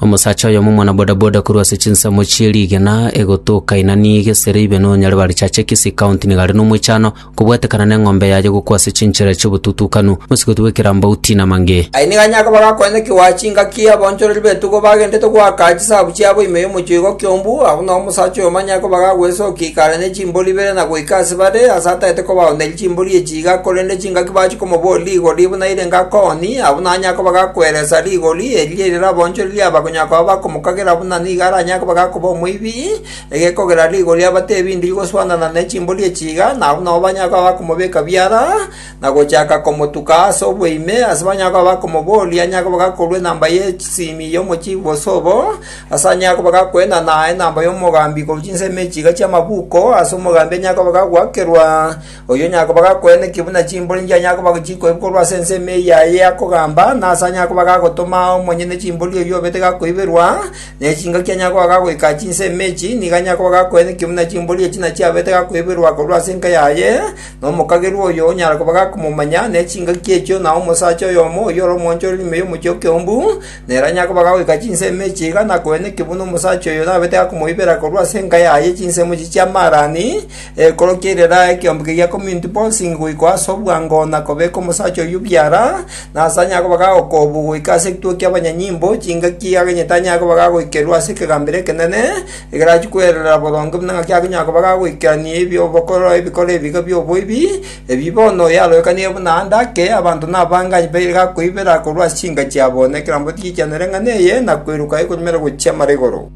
Omosacha oyomo omwana bodaboda korwa ase chinsemo chie rigena egotoka Inani gesere ibe no Nyaribarichache Kisii County nigo are nomoichano kobwatekana neng'ombe yaye gokwa ase chinchera chiobotutukanu mosigoti bwe Kirambau Tina Mange. Aye nigo anyare koba agakonya ki goa chingaki abonchoreri b'etugo bagenderete goaka chisabu chiabo ime y'omochie oigo kiombu, abwo nao omosacha oyomo anyare koba agagwesokia ikare ne chimbori ibere na goika ase bare, ase ataete kobaoneria chimbori echi. iga korende chingaki bachikomoboria rigori buna ere ngakoni, abwo nanyare koba gakweresa rigori erio erio raboonchorerie aba konya koba bakomokagera buna nigo aranyare koba gakoba omoibi, egekogera rigori abate ebinto bigoswanana ne chimbori echi iga, na abwo nabo banyare koba bakomobeka biara, na gochaka komotuka ase oboime, ase banyare koba bakomoboria anyare koba gakorua enamba ye simi y'omochibi bose obo, ase anyare koba gakoenana enamba y'omogambi korwa chinsemo echi iga chi'amabuko, ase omogambi anyare koba gagoakerwa, Oyio onyakoba gakoenda inki buna chimbori inki anyakoba chikoibwa korwa ase ensemo eye yaye akogamba, na ase anyakoba gagotoma omonyene chimbori oyio obete gakoiberwa, ne chingaki anyakoba gagoika chinsemo echi, nigo anyakoba gakoenda inki buna chimbori echi nachio abete gakoiberwa korwa ase enka yaye, na omokagerwa oyo onyara koba gakomomanya, ne chingaki echio, na omosacha oyomo oyio ore omwanchore rime y'omochi okeombu, nere anyakoba gagoika chinsemo echi iga, na koenda inki buna omosacha oyo nabete gakomoibera korwa ase enka yaye chinsemo echi chi'amaarani, Ekorokia ere eraa ekeombe keria kominto bonsingi goika ase obwango na kobeka omosacha oyio biara, na ase anyare koba gagokoobwa goika ase ekituo ki'abanyanyimbo, chingaki agenyete anyare koba gagoikerwa ase ekegambero ekenene, egerachie kwererera boronge buna ng'aki agonyara koba gagoikerania ebi'obokoro ebikoro ebiga bi'oboibi, ebi bono yaroekanire buna ande ake, abanto nabange aye baire gakoibera korwa ase chinka chiabo, na ekerambe tigichianere ng'ana eye, na kweruka ekonyumera gochia mara igoro.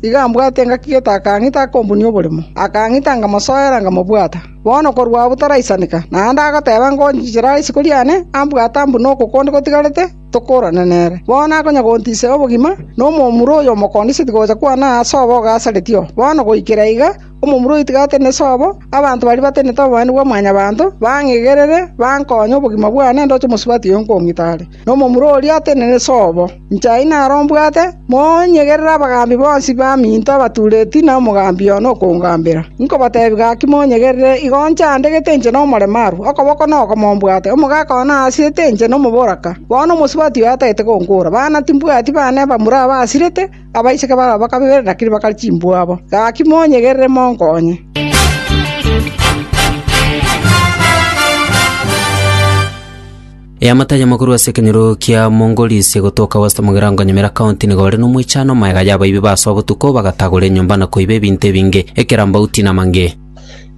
Igo ambwate engaki getaka ng'ita akombunia oborimo, akang'ita ngamosoera nkamobwata. Bono korwa abwo taraisaneka, naende agoteba ngonchichera isiko riane ambwate ambune oko konde gotigarete tokorane nere. Bono akonya gontisia obogima, na omomura oyo omokondiseti gocha kwane aa sobo ogasareti oo. Bono goikera iga, omomura oyo oitigarete ne sobo, abanto baria batenenete oboenenu bwa Mwanyabaanto, bang'igerere, bankonye obogima bwane ndoche omosubati oyo nkong'ita are. nomomura oria atenene sobo, inche aye naro mbwate, monyegerere abagaambi bonsi baminto abatuureti na omogaambi one okongambera. Inkobatebia gaki monyegerere, igo inche andegete inche nomoremarwe, okoboko nokomo mbwate, omogaka one aasirete inche nomoboraka, bono omosubati oye atagete gonkoora, bana timbwati bane bamura abasirete, abaiseke babo bakabera endakiri bakare chimbuabo. Gaki monyegerere monkonye. Eamate ayamo korwa ase ekenyoro kia Mongolisie gotoka West Mugirango Nyamira County nigo ore nomoichano omaega y'abaibi basoa botuko bagatagora enyomba na koiba ebinto ebinge, ekerambauti na mange.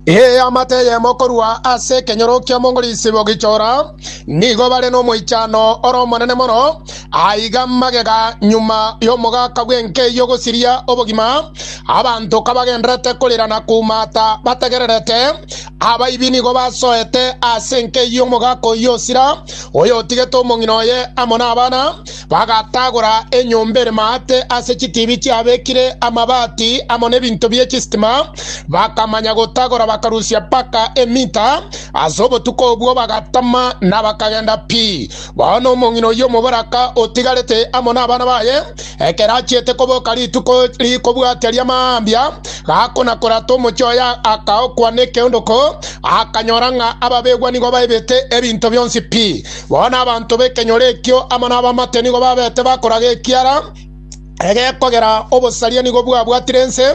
Eamate eyemo korwa ase ekenyoro kia Mongolisie bogichora nigo bare nomoichano ore omonene mono aiga magega nyuma y'omogaka bw'enkei ogosiria obogima, abanto kabagenderete korira na koumata bategererete Abaibi nigo basoete ase enkeyia omogaka oyio osira, oyotigete omong'ina oye amo nabana, bagatagora enyomba ere maate ase chitibi chiabekire amabati amo nebinto bie chisitima, bakamanya gotagora bakarusia mpaka emita. Ase obotuko obwo bagatama na bakagenda pi. Bono omong'ina oyio omobaraka otigarete amo nabana baye, ekero achiete koboka rituko rikobwatia ria mambia, gakona-korata omochie oye akaokwa nekeondoko, akanyora ng'a ababegwa nigo baibete ebinto bionsi pi. Bono abanto b'ekenyoro ekio amo nabaamate nigo babete bakoraga ekiara, egekogera obosaria nigo bwabwatire ense,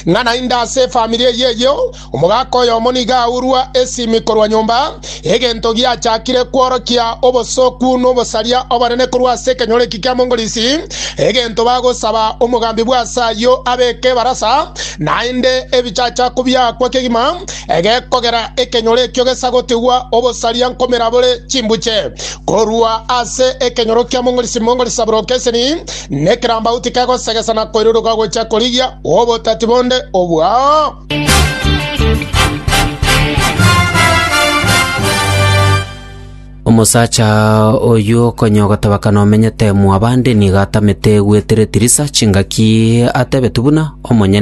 ng'a naende ase efamiri eyio eyio omogaka oyomo nigo aurwa esimi korwa nyomba, egento giachakire kworokia obosoku n'obosaria obonene korwa ase ekenyoro eki kia Mongolisi, egento bagosaba omogambi bw'ase ayio abeke ebarasa, naende ebichachaku biaakwa kegima, egekogera ekenyoro ekio gesagotigwa obosaria nkomera bore chimbuche. Korwa ase ekenyoro kia mong'orisi mong'orisa boroka eseni, na ekerambauti kegosegesa na koiruruka gochia korigia obotati bonde obwao. Omosacha oyo okonya ogotabakana omenyete mwabande nigo atamete gwetire Tirisa chingaki atebetu buna omonyene